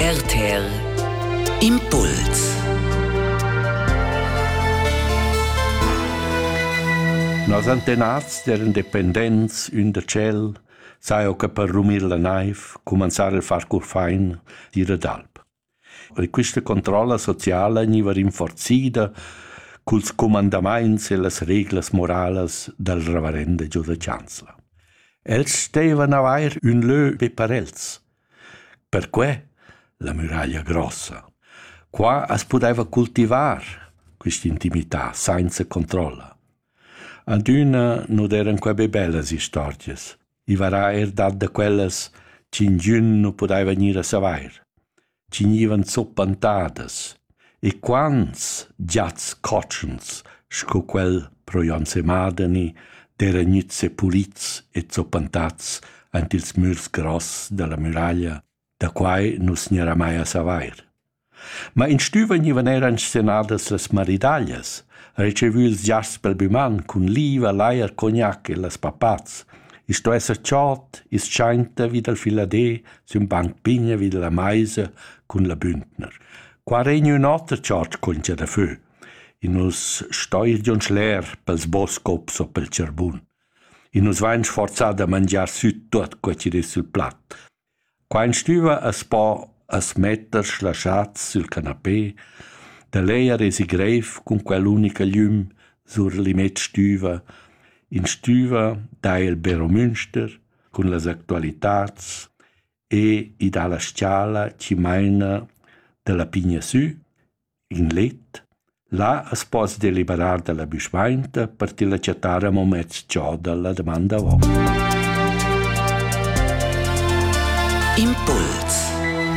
RTL Impuls Nos antenats eran dependents ün da tschel, saja che per rumir la naiv, cumanzar a far curfain, dir ad alp. E questa controlla sociala gniva rinforzida culs cumandamaints e las reglas moralas dal reverende Giuseppe Chancellor. Els stevan avair ün lö be per els, Perquei la muraglia grossa. Qua as pudeva cultivar quist'intimità sainza controlla. Adüna nu d'eiran quai be bellas istorgias. I varà eir dat da quellas ch'ingün nu pudaiva gnir a savair. Chi gnivan zuppantadas E quants giats cotschens sco quel pro Jon Semadeni d'eira gnüts sepulits e zoppantats aint ils mürs gross dalla muraglia, da quai nu's gnarà mai a savair. Ma in stüva gnivan eir inscenadas las maridaglias, retschevü ils giasts pel büman cun liva, lajer, cognac e las papats. I's sto esser tschort, i's tschainta vi dal filadé sün banc pigna vi dalla maisa cun la bündner. Qua regna ün oter tschartsch contscha da fö. I nus stoilgion schler pels boscops o pel tscharbun. I nus vain sforzà da mangiar süt tuot co chi ris sul plat. Qua in stüva as po as metter shlaschats sül canapé, da lejer es i greif cun quell'unica gliüm sur l'immet stüva, in stüva da il Beromünster, cun las actualitads e i dà la s-chala chi maina da la pigna sü in let. Là as poss deliberar da la büschmainta per tilla chattar amo mez giò da la damanda ho. Impuls